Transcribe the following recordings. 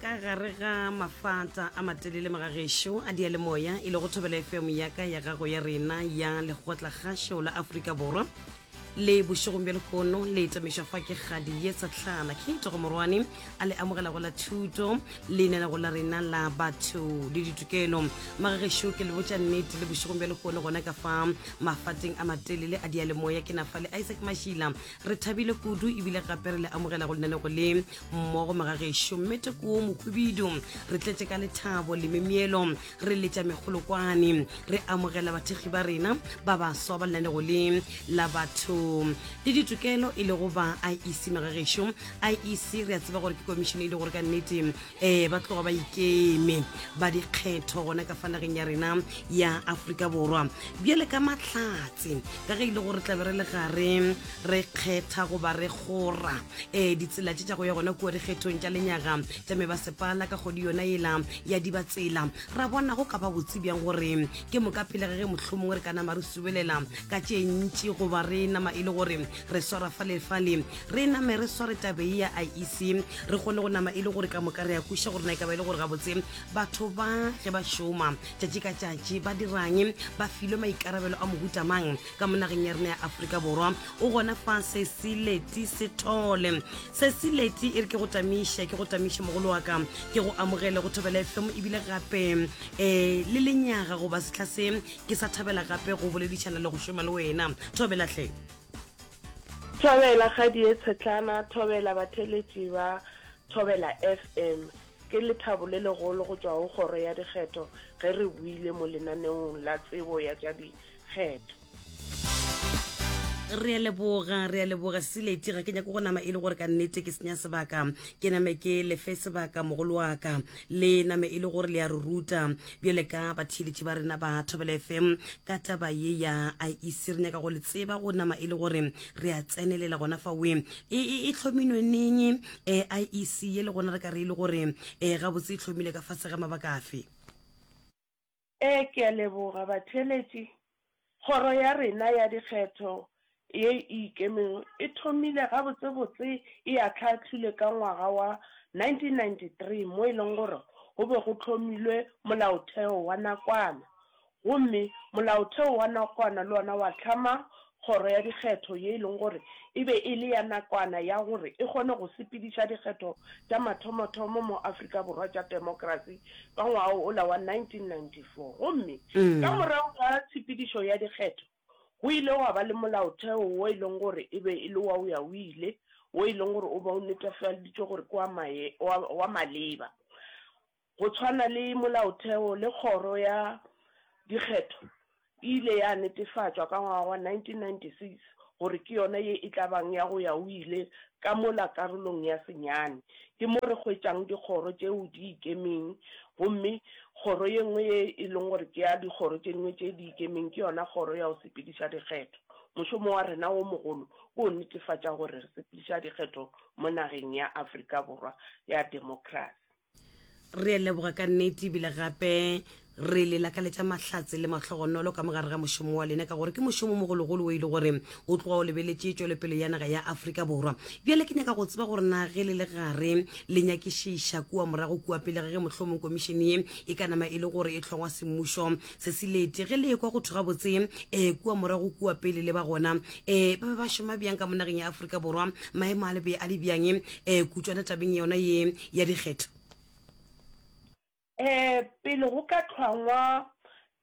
ka gare ga mafata a matelele magagešo a dialemoya e le go thobela fm ya ka ya gago ya rena ya lekgotla gašo la aforika borwa le bošegong bja lekono le tamišwa fa ke kgadi ye sa tlhala ke itogo morwane a le amogelago la thuto leinelago la rena la batho le ditokelo magagešo ke le botša nnete le bošegong bja lekono gona ka fa mafateng a matelele a dialemoya ke na fa le isaac mašila Re thabile kudu ebile gape re le amogela go lenanego le mmogo magagešo mme tekoo mohubidu re tletše ka lethabo le memeelo re letša megolokwane re amogela bathekgi ba rena ba baswa ba lenanego le la batho le ditokelo e lego ba iec magagešo iec re a tseba gore ke komišene e le gore ka nnete ee ba tloga ba ikeme ba dikgetho gona ka fanageng ya rena ya aforika borwa bjale ka mahlatse ka ge e le gore tlabe re le gare re kgetha goba re gora um ditsela tse tša go ya gona kua dikgethong tša lenyaga tša me basepala ka kgodi yona ela ya dibatsela ra bona go ka ba botse bjang gore ke moka pele ge ge mohlomongwe re ka nama re subelela ka tše ntši goba re nama e le gore re swara falefale Re name re sware tabe ya a ise re kgone go nama e le gore ka moka re a kweša gore na e ka ba e le gore gabotse batho ba ge ba šoma tšatši ka tšatši ba dirang ba filwe maikarabelo a mohuta mang ka mo nageng ya rena ya aforika borwa o gona fa sesileti sethole sesileti e re ke go tamiše ke go tamiše mogolo wa ka ke go amogele go thobela fm ebile gape um le lenyaga goba setlha se ke sa thabela gape go boledišana le go šoma le wena thobelatlhe Thobela kgadi e tshetlana, thobela batheletši ba Thobela FM. Ke lethabo le legolo go tšwa go Kgoro ya Dikgetho ge re buile mo lenaneong la Tsebo ya tša Dikgetho. Re a leboga, re a leboga Sileti. Ga ke nyake go nama e le gore ka nnete ke senya sebaka, ke name ke lefe sebaka mogolo wa ka. le name e le gore le a re ruta bjale ka batheeletši ba rena ba thobela fm ka taba ye ya iec re nyaka go le tseba go nama e le gore re a tsenelela gona fa we e, e, e tlhominwe neng um eh, iec ye le gona re ka re e le gore um gabotse e tlhomile ka fase ga mabaka afe Ee, ke a leboga, batheeletši. Kgoro ya rena ya Dikgetho ye e Ikemego e thomile gabotsebotse e ahlaahlilwe ka ngwaga wa 1993 mo e lego gore go be go hlomilwe Molaotheo wa nakwana. Gomme Molaotheo wa nakwana le wona wa hlama Kgoro ya Dikgetho ye e leng gore e be e le ya nakwana ya gore e kgone go sepediša dikgetho tša mathomothomo mo Afrika Borwa tša temokerasi ka ngwaga ola wa 1994. Gomme ka morago ga tshepedišo ya dikgetho go ile gwa ba le molaotheo wo e leng gore e be e le wa oya-o-ile wo e leng gore o be o netefalditšwe gore ke wa maleba. Go tshwana le Molaotheo le Kgoro ya Dikgetho e ile ya netefatšwa ka ngwaga wa 1996 gore ke yona ye e tla bang ya go ya o ile ka mola karolong ya senyane. Ke mo re hwetšang dikgoro tšeo di ikemeng gomme kgoro ye nngwe ye e leng gore ke ya dikgoro tše dingwe tše di ikemeng ke yona Kgoro ya go Sepediša Dikgetho. Mošomo wa rena wo mogolo ke go netefatša gore re sepediša dikgetho mo nageng ya Afrika Borwa ya demokrasi. Re a leboga ka nnete ebile gape re le lakaletša mahlatse le mahlogonolo ka mogare ga mošomo wa lena ka gore ke mošomo mogologolo o e le gore o tloga o lebeletše tšwelopele ya naga ya aforika borwa bjale ke nyaka go tseba gore na ge le le gare le nyakišiša kua morago kua pele ga ge mohlomong komišene ye e ka nama e le gore e hlongwa semmušo se se lete ge le ekwa go thwe gabotse um eh, kua morago kua pele le ba gona um ba be ba šoma bjang ka mo nageng ya aforika borwa maemo a lebe a le bjang um eh, kutswana tabeng yona ye ya dikgetho. Ee, pele go ka hlwangwa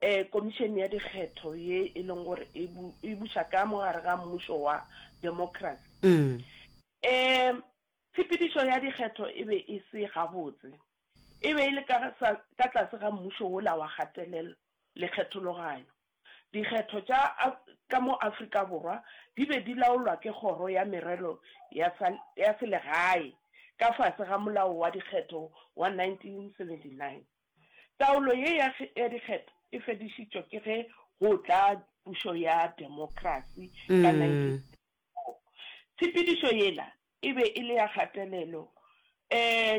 Komišene ya Dikgetho ye e leng gore e buša ka mogare ga mmušo wa democracy, ee, tshepedišo ya dikgetho e be e se gabotse. E be e le ka tlase ga mmušo wola wa kgatelelo le kgethologanyo. Dikgetho tša ka mo Afrika Borwa di be di laolwa ke Kgoro ya Merero ya Selegae ka fase ga Molao wa Dikgetho wa 1979. Taolo ye ya dikgetho e fedišitšwe ke ge go tla pušo ya demokrasi ka 1994. Tshepedišo yela e be e le ya kgatelelo.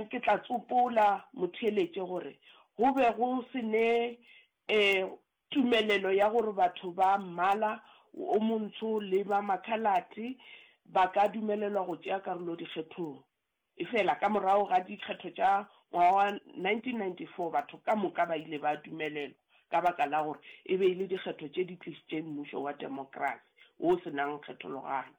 Ke tla tsopola motheeletše gore go be go se ne Tumelelo ya gore batho ba mmala o montsho le ba makhalate ba ka dumelelwa go tšea karolo dikgethong. Efela, ka morago ga dikgetho tša ngwaga wa 1994, batho ka moka ba ile ba dumelelwa ka baka la gore e be e le dikgetho tše di tlišitšeng mmušo wa demokrasi wo o se nago kgethologanyo.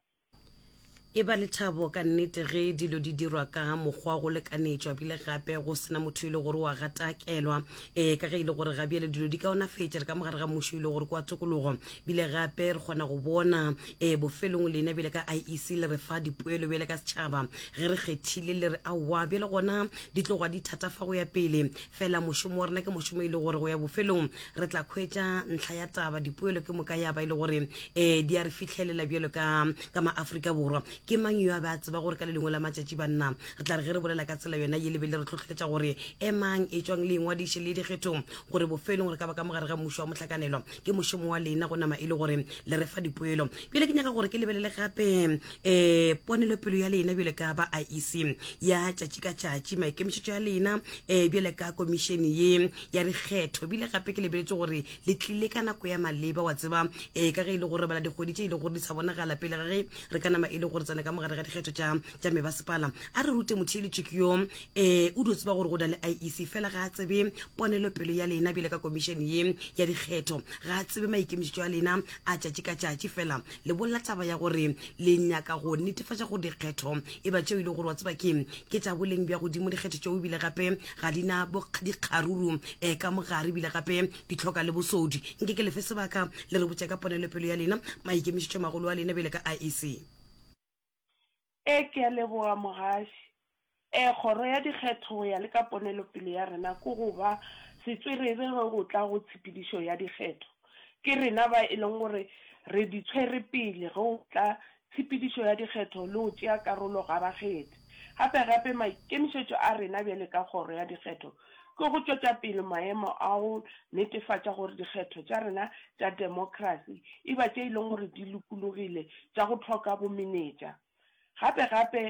E ba lethabo ka nnete ge dilo di dirwa ka mokgwa go lekanetšwa bile gape go sena motho e le gore wa gatakelwa um eh, ka ge e le gore ga bjale dilo di kaonafetša re ka mogare ga mmušo e le gore kwa tokologo bile gape re kgona go bona um eh, bofelong lena bjale ka iec le re fa dipoelo bjale ka setšhaba ge re kgethile le re aowa bjale gona di tloga di thatafa go ya pele fela mošomo wa rena ke mošomo e le gore go ya bofelong re tla khwetša ntlha ya taba dipoelo ke moka ya ba e le gore um di a re fitlhelela bjalo ka ka maaforika borwa ke mang yo a be a tseba gore ka le lengwe la matšatši banna re tla re ge re bolela ka tsela yona ye lebe le re tlhotlheletša gore emang e tswang le engwadiše le dikgethong gore bofelong gore ka ba ka mogare ga mmušo wa mohlakanelo ke mošomo wa lena go nama e le gore le re fa dipoelo bjale ke nyaka gore ke lebelele gape um ponelopelo ya lena bjale ka ba iec ya tšatši ka tšatši maikemišetšo ya lena um bjale ka komišene ye ya dikgetho ebile gape ke lebeletse gore le tlile ka nako ya maleba wa tseba ee ka ge e le gore bala dikgwedi tše e le gore di sa bonagala pele ga ge re ka nama e le gore tsena ka mogare ga dikgetho tša mebasepala a re rute motheeletšik yo um o dio tseba gore go na le iec fela ga a tsebe ponelopelo ya lena bjale ka komišene ye ya dikgetho ga a tsebe maikemišetšo a lena a tšatši ka tšatši fela le bolela taba ya gore le nyaka go netefatša gore dikgetho e ba tšeo e le gore wa tseba ke ke tša boleng bja godimo dikgetho tšeo ebile gape ga di na dikgaruru um ka mogare ebile gape di tlhoka le bosodi nke ke lefe sebaka le re botša ka ponelopelo ya lena maikemišetšo magolo a lena bjale ka iec Ee, ke a leboga, Mogaši. Ee, Kgoro ya Dikgetho go ya le ka ponelopele ya rena ke go ba setswerere ge go tla go tshepedišo ya dikgetho. Ke rena ba e leng gore re di tshwere pele ge go tla tshepedišo ya dikgetho le go tšea karolo ga bakgethi. Gape gape maikemišetšo a rena bjale ka Kgoro ya Dikgetho ke go tšwetša pele maemo a go netefatša gore dikgetho tša rena tša demokrasi e ba tše e leng gore di lokologile, tša go hloka bomenetša, Gape-gape,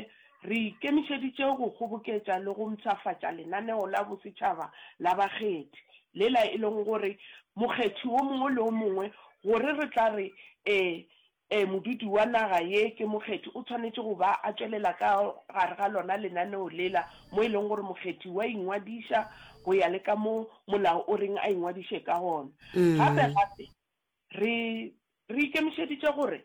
re ikemišeditše go kgoboketša le go mpshafatša lenaneo la bosetšhaba la bakgethi, lela e lego gore mokgethi wo mongwe le wo mongwe, gore re tla re ee, ee, modudi wa naga ye ke mokgethi, o swanetše go ba a tšwelela ka gare ga lona lenaneo lela, mo e lego gore mokgethi o a ingwadiša go ya le ka mo molao o reng a ingwadiše ka gona. Gape-gape, re, re ikemišeditše gore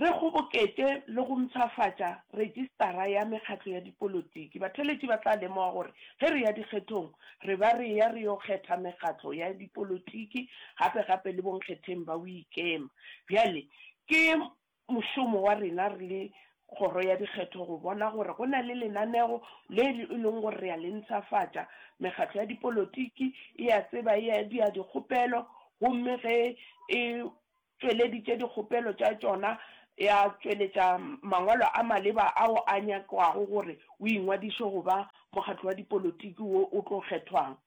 Re kgoboketše le go mpshafatša Retšistara ya Mekgatlo ya Dipolotiki. Batheeletši ba tla lemoga gore ge re ya dikgethong re ba re eya re yo kgetha mekgatlo ya dipolotiki gape gape le bonkgetheng ba boikema. Bjale ke mošomo wa rena re le Kgoro ya Dikgetho go bona gore go na le lenaneo le e leng gore re a le ntšhafatša. Mekgatlo ya dipolotiki e a tseba, e a dira dikgopelo gomme ge e. tšweleditše dikgopelo tša tšona, ya tšweletša mangwalo a maleba ao a nyakwago gore o ingwadiše go ba mokgatlo wa dipolotiki wo o tlo kgethwang.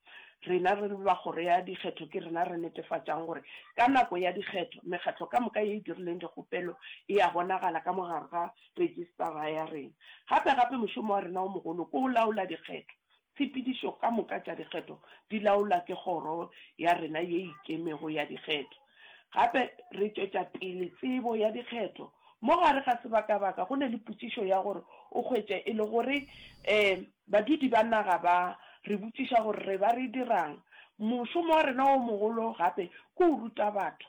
Rena re le ba Kgoro ya Dikgetho ke rena re netefatšang gore ka nako ya dikgetho mekgatlo ka moka ye e dirileng dikgopelo e a bonagala ka mo gare ga rejistara ya rena. Gape-gape mošomo wa rena o mogolo ke go laola dikgetho Tshepedišo ka moka tša dikgetho di laolwa ke Kgoro ya rena ye Ikemego ya Dikgetho. Gape re tšwetša pele tsebo ya dikgetho. Mo gare ga sebakabaka go ne le potšišo ya gore o hwetše e le gore ee badudi ba naga ba re botšiša gore re ba re dirang. Mošomo wa rena o mogolo gape ke o ruta batho.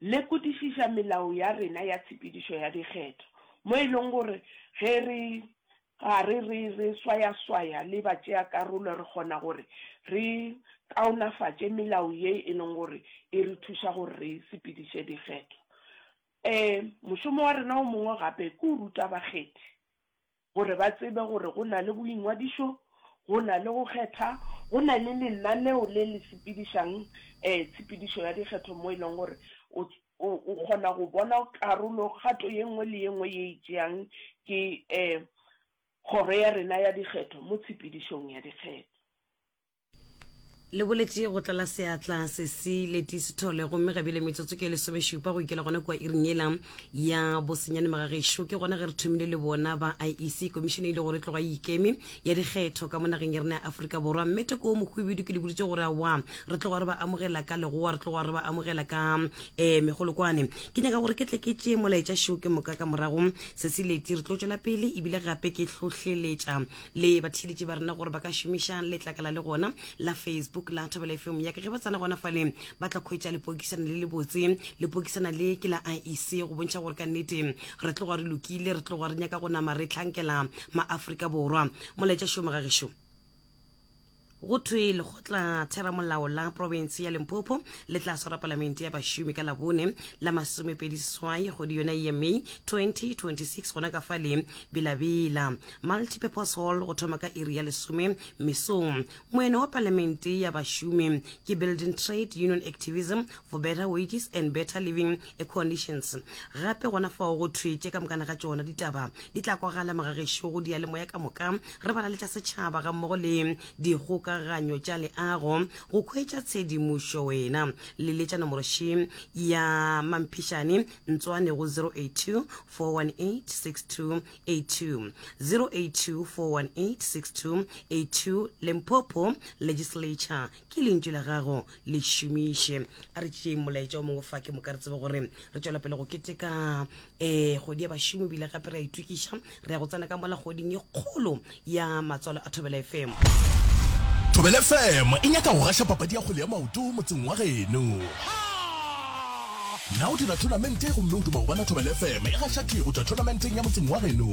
Lekodišiša melao ya rena ya tshepedišo ya dikgetho, mo e lego gore ge re gare re re swayaswaya le batšeakarolo re kgona gore re kaonafatše melao ye e lego gore e re thuša gore re sepediše dikgetho. E, mošomo wa rena o mongwe gape ke go ruta bakgethi. Gore ba tsebe gore go na le boingwadišo, go na le go kgetha, go na le lenaneo le le sepedišang tshepedišo ya dikgetho mo e leng gore o o kgona go bona karolo kgato ye nngwe le ye nngwe ye e tšeang ke Kgoro ya rena ya Dikgetho mo tshepedišong ya dikgetho. Le boletše go tlala seatla sesi leti sethole gomme ga bile metsotso ke lesomešupa go ikela gona kua iring yela ya bosenyane magagešo ke gona ge re thomile le bona ba iec komišene e ile gore tloga e ikeme ya dikgetho ka mo nageng ya rena ya aforika borwa mme toko mokhubedu ke le boditse gore awa re tloga re ba amogela ka legoa re tloga re ba amogela ka um megolokwane ke nyaka gore ke tle ke tšee molaetša šo ke moka ka morago sesi leti re tlo tšwela pele ebile gape ke hlohleletša le batheeletši ba rena gore ba ka šomiša letlakala le gona la facebook la thobela fm yaka ge ba tsena gona faleng ba tla kgwetša lepokisana le le botse lepokisana le ke la iec go bontšha gore ka nnete re tloga re lokile re tloga re nyaka go nama re tlhankela maaforika borwa molaetša šomo ga gešo go thwe lekgotla theramolao la province ya limpopo le tla swara palamente ya bašomi ka labone la masomepedi seswai kgwedi yona ye may 2026 gona ka fa le bilabila multipurpose hall go thoma ka iri ya lesome mesong moene wa palamente ya bašomi ke building trade union activism for better wages and better living eh, coalitions gape gona fao go thwetše ka mokana ga tšona ditaba di tla kwagala magagešo go diyalemoya ka moka re bala le tša setšhaba ga mmogo le dikgokaganyo tša leago go khwetša tshedimošo wena le letša nomoroši ya mamphišane ntswane go 082 418 6282 082 418 6282 lempopo legislature ke lentšu la gago le šomiše a re tšeeng molaetša o mongwe fa ke moka re tsebe gore re tšwela pele go keteka um eh, kgodi ya bašomi bile gape re a itokiša re ya go tsena ka mola kgoding e kgolo ya matswalo a thobela fm thobela fm e nyaka go gaša papadi ya kgole ya maoto motseng wa geno Na o dira thonamente gomme o duma go bona Thobela FM e gaša thwi go tšwa thonamenteng ya motseng wa geno?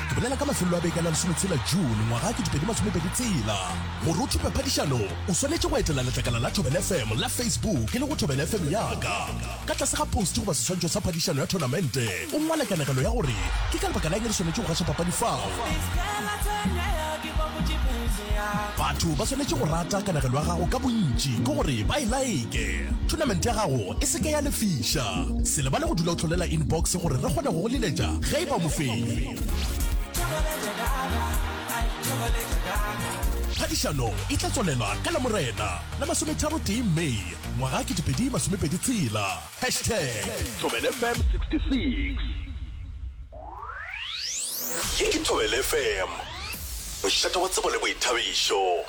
Ke bolela ka mafelelo a beke la lesometshela June ngwaga ke dipedi masomepedi tsela. Gore o thupe phadišano, o swanetše go etela letlakala la Thobela FM la Facebook e lego Thobela FM Yaka. Ka tlase ga posti goba seswantšho sa phadišano ya thonamente, o ngwale kanegelo ya gore ke ka lebaka la eng re swanetše go gaša papadi fao. Batho ba swanetše go rata kanegelo ya gago ka bontši ke gore ba e like. Thonamente ya gago e se ke ya lefiša. Se lebale go dula o hlolela inbox gore re kgone go go leletša ge e ba mofenyi. Phadišano e tla tswalela ka Lamorena la masometharotee May ngwaga 2026. Hashtag Thobelfm 66. Ye ke Thobela FM, mošate wa tsebo le boithabišo.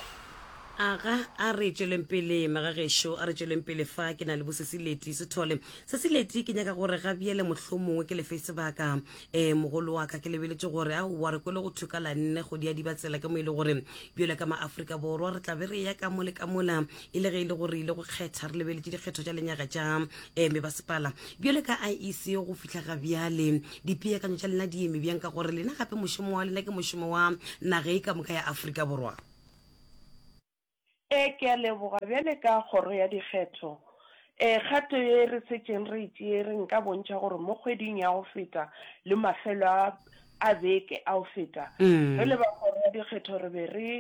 Aga a re tšweleng pele magagešo, a re tšweleng pele fa ke na le bosesileti sethole. Sesileti ke nyaka gore ga bjele mohlomongwe ke lefe sebaka e mogolo wa ka ke lebeletše gore a wa re kwele go thuka la nne go diadiba tsela ke mo ile gore bjele ka ma Afrika Borwa re tla be re ya ka mole ka mola e le ge e le gore ile go kgetha re lebeletše dikgetho tša lenyaga tša um eh, mebasepala bjale ka iec go fihla ga bjale dipeakanyo tša lena di eme bjang ka gore lena gape mošomo wa lena ke mošomo wa naga e ka moka ya aforika borwa e ke a leboga bjale ka kgoro ya dikgetho Ee, kgato ye re šetšeng re e tšere nka bontšha gore mo kgweding ya go feta le mafelo a a beke a go feta, re le ba Kgoro ya Dikgetho re be re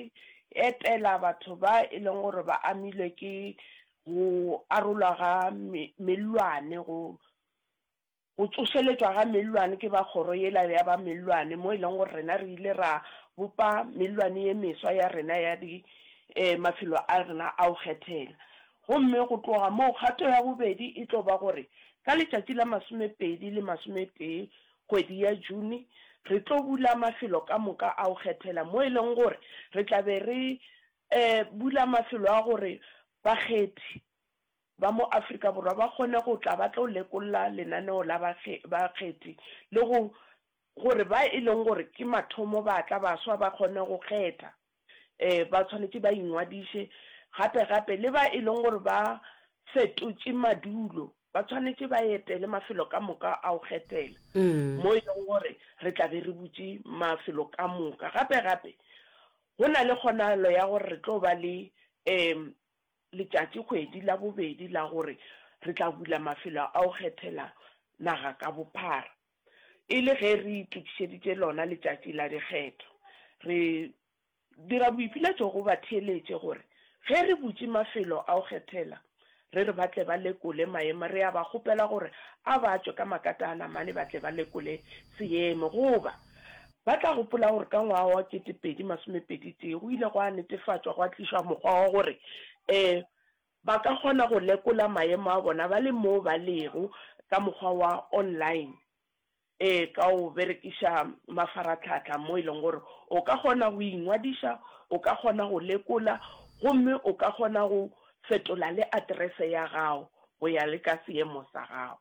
etela batho ba e leng gore ba amilwe ke go arolwa ga mellwane go Go tsošeletšwa ga mellwane ke ba kgoro yela ya ba mellwane mo e leng gore rena re ile ra bopa mellwane ye meswa ya rena ya di eh mafelo a rena a go kgethela. Gomme go tloga moo kgato ya bobedi e tlo ba gore ka letšatši la masomepedi le masometee kgwedi ya June re tlo bula mafelo ka moka a go kgethela mo e leng gore re tla be re eh bula mafelo a gore bakgethi ba mo Afrika Borwa ba kgone go tla ba tlo lekolla lenaneo la bakgethi le go gore ba e leng gore ke mathomo ba tla baswa ba kgone go kgetha ba tshwanetse ba ingwadiše gape gape le ba e leng gore ba fetotše madulo ba tshwanetse ba etele mafelo ka moka a go kgethela mo e leng gore re tla be re butše mafelo ka moka gape gape go na le kgonagalo ya gore re tlo ba le um letšatšikgwedi la bobedi la gore re tla bula mafelo a go kgethela naga ka bophara, e le ge re itokišeditše lona letšatši la dikgetho. Re dira boipiletšo go batheeletše gore ge re butše mafelo a go kgethela, re re ba tle ba lekole maemo, re a ba kgopela gore a ba tšwe ka makataana mane ba tle ba lekole seemo, goba Ba tla gopola gore ka ngwaga wa kete pedi masome pedi tee go ile gwa netefatšwa gwa tlišwa mokgwa wa gore e ba ka kgona go lekola maemo a bona ba le moo ba lego ka mokgwa wa online e ka go berekiša mafaratlhatlha mo e leng gore o ka kgona go ingwadiša, o ka kgona go lekola gomme o ka kgona go fetola le aterese ya gago go ya le ka seemo sa gago.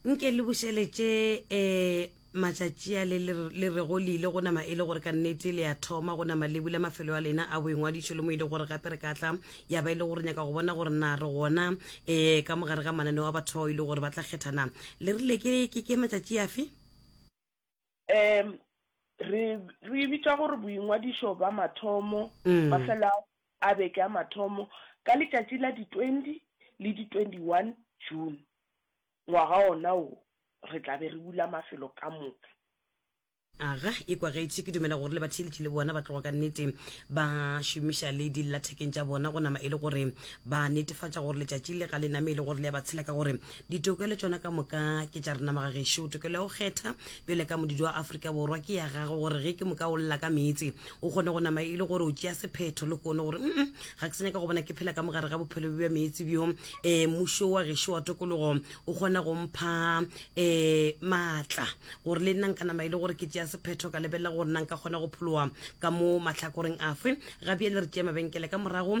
nke le bušeletše um matšatši a le le rego le ile go nama e le gore ka nnete le ya thoma go nama le bula mafelo a lena a boingwadišo le mo e le gore gape re ka tla ya ba e le gore nyaka go bona gore na re gona um ka mogare ga mananeo a batho bao e le gore ba tla kgethana le rile ke matšatši afe Ee, re, re e bitša gore boingwadišo bja mathomo, mafelo a, a beke a mathomo, ka letšatši la di 20 le di 21 June, ngwaga wona wo, re tla be re bula mafelo ka moka. Aga, e kwagetše. Ke dumela gore le batheeletši le bona ba tloga ka nnete ba šomiša le dillathekeng tša bona go nama e le gore ba netefatša gore letšatši le ga le name e le gore le a ba tshela, ka gore Ditokelo tšona ka moka ke tša rena magagešo. Tokelo ya go kgetha bjale ka modidi wa Afrika Borwa ke ya gago gore ge ke moka o lla ka meetse o kgone go nama e le gore o tšea sephetho le kone gore mm ga ke senyaka go bona ke phela ka mogare ga bophelo bja meetse bjo um eh, mušo wa gešo wa tokologo o kgona go mpha um maatla gore le nna nka nama e le gore ke tšea sephetho ka lebelela gore nna nka kgona go pholoa ka mo matlhakoreng afe gabjale re tšea mabenkele ka morago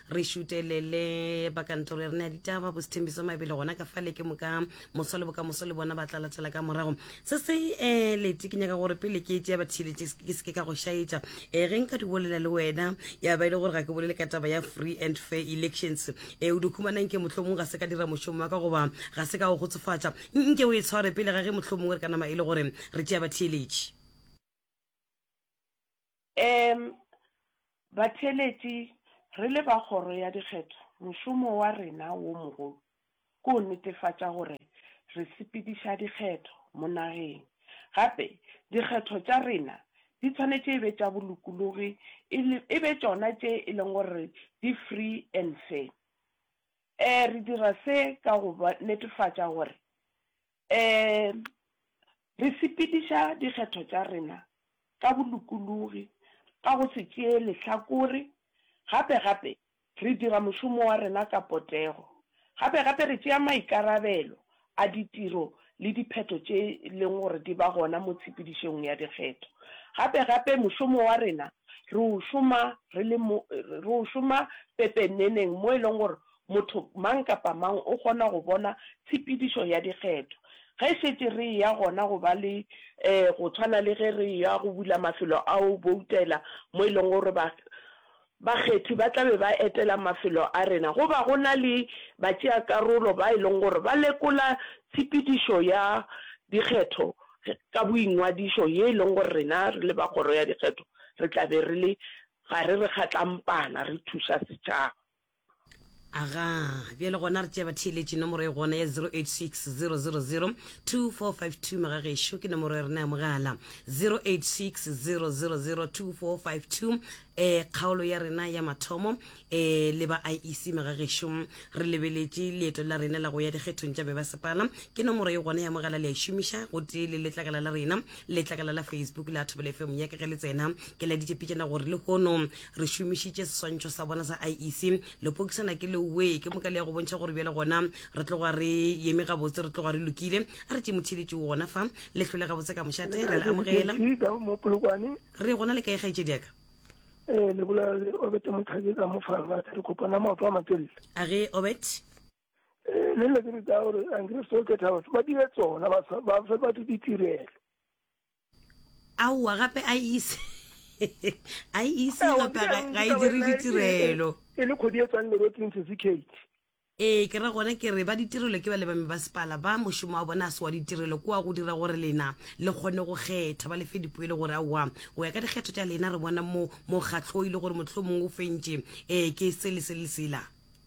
re šutelele ba kantoro re ne ya ditaba bosethembiso mabele gona ka fale ke moka moso le bokamoso le bona ba tla latela ka morago se se um lete ke nyaka gore pele ke etse ya bathieletse ke seke ka go šaetša um ge nka di bolela le wena ya ba e le gore ga ke bolele ka taba ya free and fair elections um eh, o di humanang ke mohlomong ga se ka dira mošomo wa ka goba ga se ka o gotsofatša nke o e tshware pele ga ge mohlomong re ka nama e le gore re tšea batheeletše Ee, batheeletši, re le ba Kgoro ya Dikgetho, mošomo wa rena wo mogolo ke go netefatša gore re sepediša dikgetho mo nageng. Gape, dikgetho tša rena di tshwanetše e be tša bolokologi e le, e be tšona tše e leng gore di free and fair. Ee, re dira se ka go netefatša gore, ee, Re sepediša dikgetho tša rena ka bolokologi ka go se tšee lehlakore, gape-gape re dira mošomo wa rena ka potego. Gape-gape re tšea maikarabelo a ditiro le diphetho tše leng gore di ba gona mo tshepedišong ya dikgetho. Gape-gape mošomo wa rena re o šoma re le mo, re o šoma pepeneneng mo e leng gore Motho mang kapa mang o kgona go bona tshepedišo ya dikgetho. Ge šetše re eya gona go ba le, ee, go tshwana le ge re eya go bula mafelo a go boutela mo e lego gore ba, bakgethi ba tla be ba etela mafelo a rena, go ba go na le batšeakarolo ba e lego gore ba lekola tshepedišo ya dikgetho ka boingwadišo ye e lego gore rena re le ba Kgoro ya Dikgetho re tla be re le gare re kgatlampana re thuša setšhaba. aga bjale gona re tšea batheeletši nomoro e gona ya 0860002452 magagešo ke nomoro ya rena ya mogala 0860002452 um eh, kgaolo ya rena ya mathomo eh, le ba iec magagešo re lebeletše leeto la rena la go ya dikgethong tša bebasepala ke nomoro e gona ya mogala le a e šomiša gotee le letlakala la rena letlakala la facebook la thobele fm ya ke ge le tsena ke laditše pitšana gore le hono re šomišitše seswantšho sa bona sa iec lepokisana ke leoe ke moka le ya go bontšha gore bjale gona re tloga re yeme gabotse re tloga re lokile a re tšemothiletše gona fa le hlole gabotse ka mošate re le amogela re gona le ka egaetše diaka ee eh, le bola obete mothabi ka mofalmate re kopana maoto a matelele a re obet Eh, le nna ke re ka gore angre so ke thaba ba dire tsona ba fe batho ditirelo aowa gape a ise a ise gape ga e dire ditirelo e le kgodi e tswang lerotseng certificate ee ke ra gone ke re ba ditirelo ke ba le bame ba sepala ba mošomo wa bona a se wa ditirelo kwa go dira gore lena le kgone go kgetha ba lefe dipo e le gore aowa go ya ka dikgetho tša lena re bona mo mokgatlho e le gore motlho mongwe o fentše um ke se le se le sela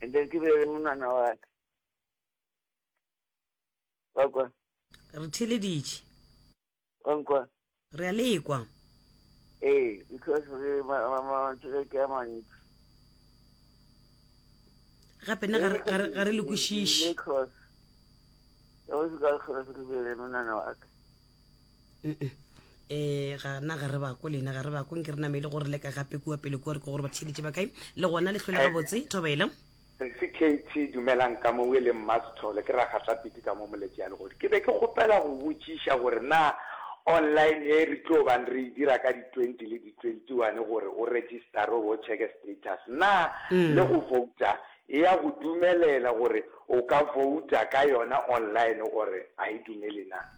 and then ke be le monwana wa ka wa kwa re theleditše wa nkwa re a lekwa ee because re matswele ke a mantsi gape nna ga re- ga re- ga re le kwešiše Because- ka go se ka kgona se ke bele monana wa ka um gana ga re bako lena ga re bako nke re namele gore le ka gape kua pele kua re ke gore ba tšheditše ba kae le gona le tlhole eh. gabotse thobelo sesi kt dumelang ka mo o e leng mmasithole ke ragatla piti ka mo moletši ya legodi ke be ke kgopela go botšiša gore na online e re tlo bang re e dira ka di-twenty le di-twenty-one gore o registare o checke status na mm. le go vouta e ya go dumelela gore o ka vouta ka yona online gore a e dumele na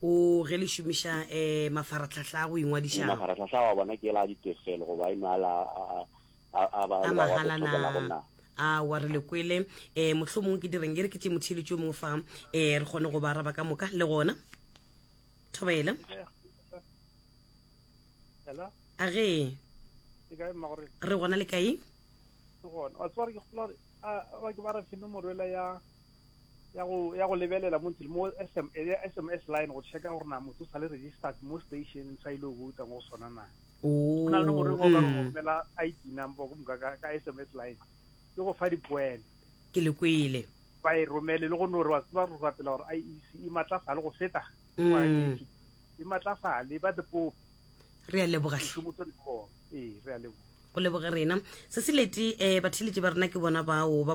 O, ge le šomiša e, mafaratlhahla a go ingwadiša. Mafaratlhahla wa bona ke la ditefelo goba eno a la a, a, a, a ba le ba go tlhokelago na? A wa re le kwele. E, mohlomongwe ke direng e re ke tše motheeletši o mongwe fa, e, re kgone go ba araba ka moka, le gona. Thobela. Hello? A ge. Ke kae mma gore? Re gona le kae? Ke gona. Wa tseba gore ke kgolo gore, a, ba ke ba re fe nomoro ela ya. ya go ya go lebelela mo ntle mo SM ya SMS line go checka gore na motho sa le registered mo station sa ile go tsa go sona na o na le gore go ka go mela ID number go muka ka ka SMS line ke go fa dipoelo ke le kwele ba e romele le go no re wa tsba go rapela gore IEC e matlafale go feta e matlafale ba the pope re a leboga hle motho le go e re a leboga go leboga rena se se leti um eh, batheletši ba rena ke bona bao ba